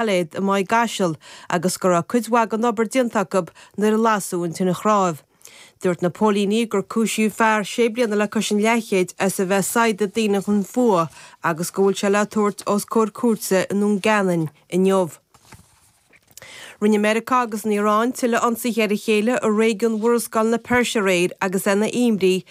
Gailéad i Maigh gCaiseal agus go raibh cuid mhaith den obair déanta acu nuair a lasadh an tine chnáimh. Dúirt na póilíní gur cúisíodh fear sé bliana le cois an leathchéid as a bheith ag saighdeadh daoine chun fuath agus go bhfuil sé le tabhairt os comhair cúirte i nDún Geanainn inniu. Rinne Meiriceá agus an Iaráin tuilleadh ionsaithe ar a chéile i réigiún Mhurascaill na Peirse aréir agus é ina imní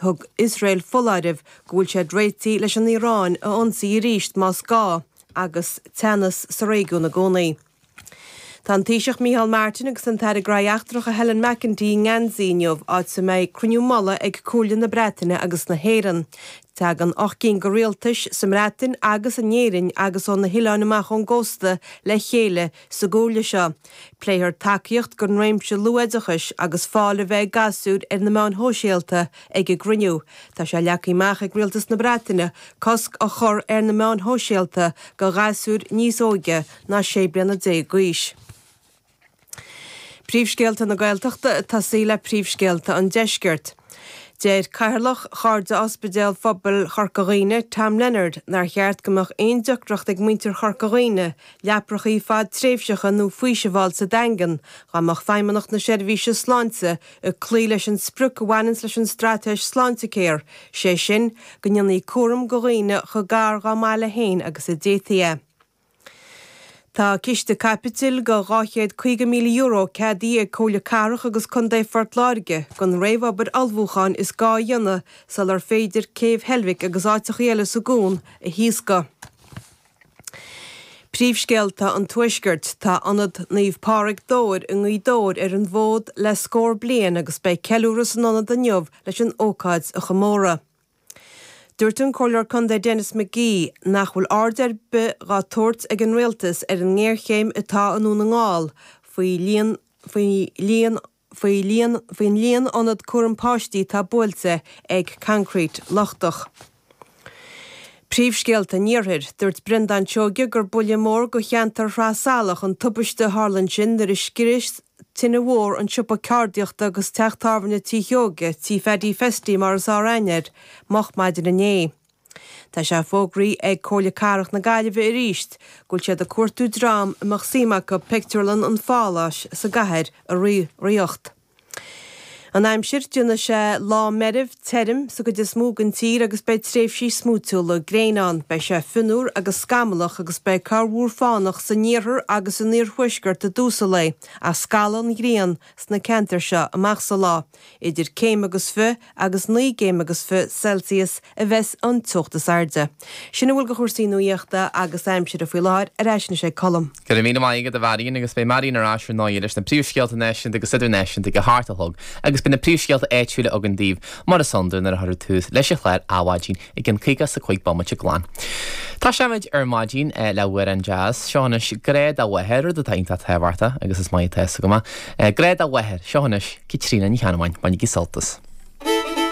Thug Iosrael foláireamh go bhfuil siad réitithe leis an Iaráin a ionsaí arís más gá agus teannas sa réigiún i gcónaí. Tá an Taoiseach Micheál Martin agus an tAire Gnóthaí Eachtracha Helen McEntee i nGeansaí inniu áit a mbeidh cruinniú mullaigh ag Comhairle na Breataine agus na hÉireann. Tagann ocht gcinn de rialtais, sa mBreatain agus in Éirinn agus ó na hoileáin amach ón gcósta, le chéile Sa gComhairle seo, pléifear tacaíocht don réimse luathoideachais agus fáil a bheith ag gasúir ar na meáin shóisialta ag a gcruinniú. Tá sé leagtha amach ag Rialtas na Breataine cosc a chur ar na meáin shóisialta do ghasúir níos óige ná 16 bliana d'aois. Príomhscéalta na Gaeltachta, ag tosaí le príomhscéalta an Deiscirt. Deir Cathaoirleach Chairde Ospidéal Phobail Chorca Dhuibhne, Tom Leonard, nár cheart go mbeadh aon deacracht ag muintir Chorca Dhuibhne leaprachaí fadtréimhseacha nó faoiseamh a fháil sa Daingean dá mbeadh Feidhmeannacht na Seirbhíse Sláinte ag cloí leis an sprioc a bhaineanns leis an Straitéis Sláintecare, sé sin, go ndéanfaí cúram do dhaoine chomh gar dhá mbaile féin agus a d'fhéadfaí é. Tá ciste caipitil de €250,000 ceadaithe ag Comhairle Cathrach agus Contae Phort Láirge don réamhobair ullmhúcháin is gá a dhéanamh sular féidir Céibh Heilbhic agus áiteachaí eile sa gcuan a thaoscadh. Príomhscéalta an Tuaiscirt, Tá Ionad Naomh Pádraig Dobhair i nGaoth Dobhair ar an bhfód le scór bliain agus beidh ceiliúradh san ionad inniu leis an ócáid a chomóradh. Dúirt an Comhairleoir Contae Denis McGee nach bhfuil aird ar bith dhá tabhairt ag an Rialtas ar an ngéarchéim atá i nDún na nGall faoi líon faoin líon ionad cúram páistí atá buailte ag concrete lochtach. Príomhscéalta an Iarthair. Dúirt Brendán Seoige gur buille mór do cheantar Shraith Salach an tubaiste a tharla ansin nuair a scrios tine mhór, an siopa ceardaíochta agus teach tábhairne Tí Sheoige, Tí Phaddy Festy mar is fearr aithne air, moch maidin inné. Tá sé fógraithe ag Comhairle Cathrach na Gaillimhe arís go bhfuil siad ag cuartú dream a mbeadh suim acu pictiúrlann an Pháláis sa gCathair a reáchtáil. An aimsir, Déanfaidh sé lá meirbh, tirim, sa gcuid is mó den tír agus beidh tréimhsí smúitiúla gréine ann. Beidh sé fionnuar agus scamallach agus beidh corrmhúr fánach san iarthar agus san iarthuaisceart i dtús an lae ach scalfaidh an ghrian sna ceantair seo amach sa lá. Idir céim agus fiche agus naoi gcéim agus fiche Celsius a bheas an teocht is airde. Sin a bhfuil de chúrsaí nuaíochta agus aimsire faoi láthair, ar ais anois ag Colm. Go raibh míle maith agat, a Mharion, agus beidh Marion ar ais ar ndóigh leis na príomhscéalta náisiúnta agus idirnáisiúnta ag a hocht a chlog agus beidh na príomhscéalta áitiúla againn daoibh mar is iondúil nuair a chuirfear tús leis a chlár Adhmhaidin i gceann caoga is a cúig bomaite glan. Tosóidh muid ar maidin le hamhrán deas, seo anois Grá dá Mháthair, rud atá iontach tábhachtach agus is maith atá a fhios agam é. Grá dá Mháthair, seo anois Caitríona Ní Cheannabháin, bainigí sult as.